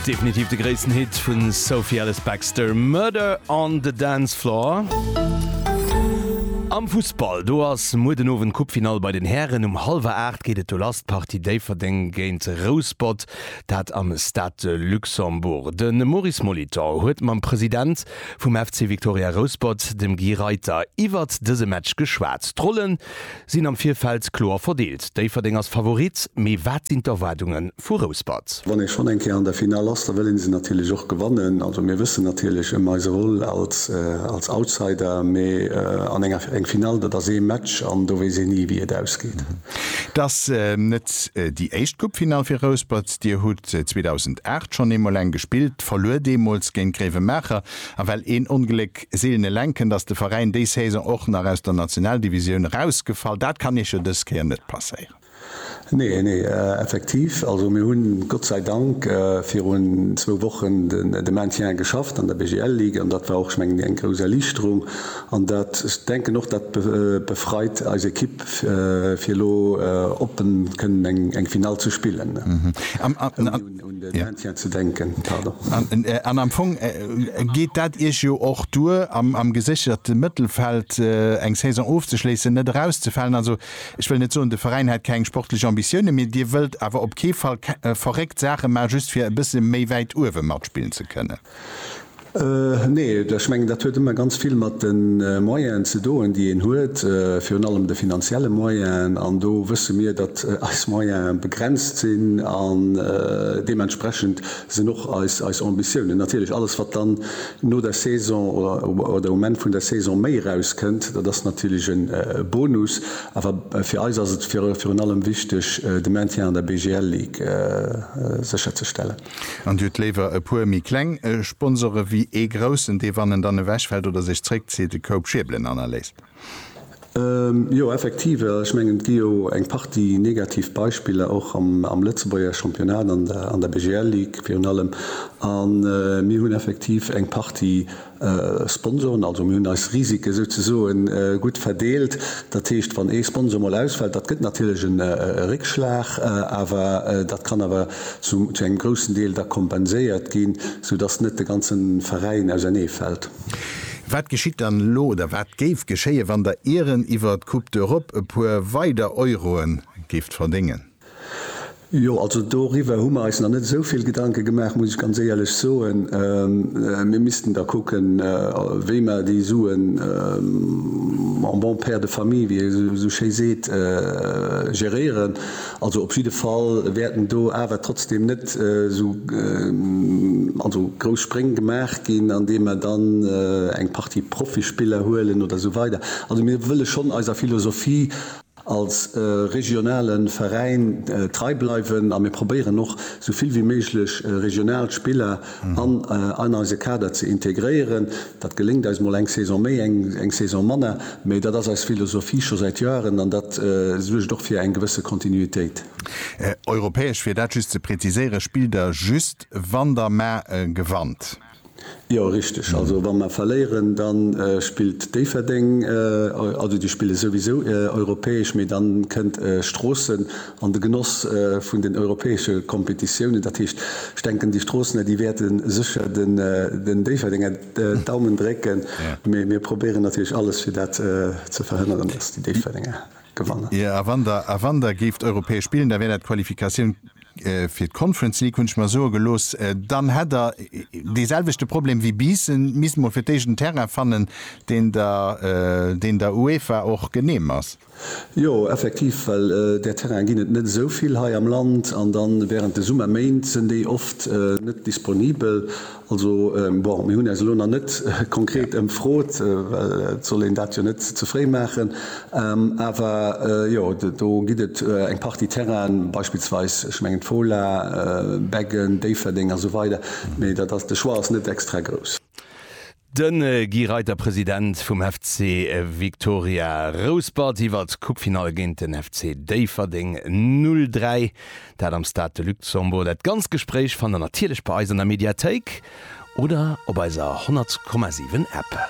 Definitiv de gréissten Hit vun Sophie Ellis Bextor, Murder on the Dance Floor. Am Fussball, do ass muer den Owend Coupe-Finall bei den Hären. Um hallwer 8 geet et do lass, d'Partie Déifferdeng géint Rouspott, dat am Stade de Luxembourg. De Maurice Molitor huet mam President vum FC Victoria Rouspott, dem Guy Reiter, iwwert dëse Match geschwat. D'Rollen Sinn am Virfeld kloer verdeelt. Déifferdeng ass Favorit, mee wat sinn d'Erwaardunge vu Rouspert? Wann ee schonn eng Kéier an der Finall ass, da wëll ee se natierlech och gewannen. Also mir wëssen natierlech ëm eise Rôle als Outsider, mee an enger eng Finall, dat ass ee Match an do weess een ni, wéi et ausgeet. Et ass net déi éischt Coupefinall fir Rouspert. Dir hutt 2008 schonn eemol eng gespillt, verluer deemools géint Gréiwemaacher. A well een Ongléck Seelen eleng kënnt, ass de Veräin déi Saison och nach aus der Nationaldivisioun erausgefall. Dat kann Iech jo dës Kéier net passéieren. Nee, nee, effektiv. Also mir hunn, Gott sei Dank, virun zwou Wochen de Maintien geschafft an der BGL Ligue an dat war och, ech mengen, eng grouss Erliichterung. An dat, ech denken och, dat befreit eis Ekipp, fir elo oppen kënnen eng Finall ze spillen. An am Fong geet dat Iech jo och duer, am gesécherten Mëttelfeld eng Saison ofzeschléissen, net erauszefalen. Also ech wëll net soen, de Veräin hätt keng sportlech Ambitiounen, mee Dir wëllt awer op kee Fall verréckt Saache maachen, just fir e bësse méi wäit uewe matspillen ze kënnen. Nee, ech mengen dat huet ëmmer ganz vill mat de Moyenen ze doen, déi een huet, virun allem de finanzielle Moyenen. An do wësse mir, datt eis Moyene begrenzt sinn an deementsprechend sinn och eis Ambitiounen. Natierlech, alles wat dann no der Saison oder um Enn vun der Saison méi erauskënnt, dat ass natierlech e Bonus. Awer fir eis ass et virun allem wichteg, de Maintien an der BGL-Ligue sécherzestellen. An Dir hutt léiwer e puer méi kleng Sponsore wéi ee groussen, dee wann en dann ewechfält oder sech zréckzitt, de Koup schierbelen hannerléisst? Jo, effektiv. Ech mengen, et gi jo eng Partie negativ Beispiller och am Lëtzebuerger Championnat, an der BGL-Ligue virun allem. A mir hunn effektiv eng Partie Sponsoren, also mir hunn eis Risike souzesoe gutt verdeelt. Dat heescht, wann ee Sponsor mol ausfält, dat gëtt natierlech e Réckschlag, awer dat kann awer zu engem groussen Deel da kompenséiert ginn, soudass net de ganze Veräin ausernee fält. Wat geschitt dann elo oder wat géif geschéien, wann Der Iren iwwer d'Coupe d'Europe e puer weider Euroe géift verdéngen? Jo, also doriwwer hu mer eis nach net esou vill Gedanke gemaach, muss ech ganz éierlech soen. Mir missten da kucken, wéi mer déi Suen en bon père de famille, wéi ee esou schéi seet, geréieren. Also op jidde Fall wäerten do awer trotzdeem net esou also grouss Spréng gemaach ginn, andeem mer dann eng Partie Profispiller huelen oder esou weider. Also mir wëlle schonn eiser Philosophie. als regionale Veräin trei bleiwen a mir probéieren och esou vill wéi méiglech regional Spiller an an eise Kader ze integréieren. Dat geléngt eis mol eng Saison méi, eng Saison manner, mee dat ass eis Philosophie scho säit Joeren an dat suergt och fir eng gewësse Kontinuitéit. Europäesch, fir dat just ze präziséieren, spillt Der just wann Der mar gewannt? Jo richteg, also wa mer verléieren da spillt Déifferdeng, also déi spille souwisou europäesch, mee da kënnt Stroossen an de Genoss vun den europäesche Kompetitiounen. Dat heescht ech denken déi Stroossener déi wäerte sécher den Déifferdenger d'Daumen drécken, mee mir probéieren natierlech alles fir dat ze verhënneren, datt déi Déifferdenger gewannen. A wann der géift europäesch spillen, da wär dat d'Qualifikatioun Fir d'Conference League hunn ech mer soe gelooss, dann hätt Der dee selwechte Problem wéi Biissen, misst mol fir d'éischt en Terrain fannen, deen der, deen der UEFA och genehm ass. Jo, effektiv, well där Terrainen ginn et net esou vill hei am Land, an da wärend de Summerméint sinn déi oft net disponibel. Also, bon, mir hunn äis elo nach net konkret ëmfrot, well et soll een dat jo net ze fréi maachen. Awer jo, do gëtt et eng Partie Terrainen, beispillsweis, ech mengen d'Fola, Beggen, Déifferdeng a sou weider, mee dat ass, de Choix ass net extra grouss. De Guy Reiter, President vum FC Victoria Rouspert iwwert d'Coupe-Finall géint den FC Déifferdeng 03. Dat am Stade de Luxembourg. Dat ganzt Gespréich fannt der natierlech bei eis an der Mediathéik oder op eiser 100,7 App.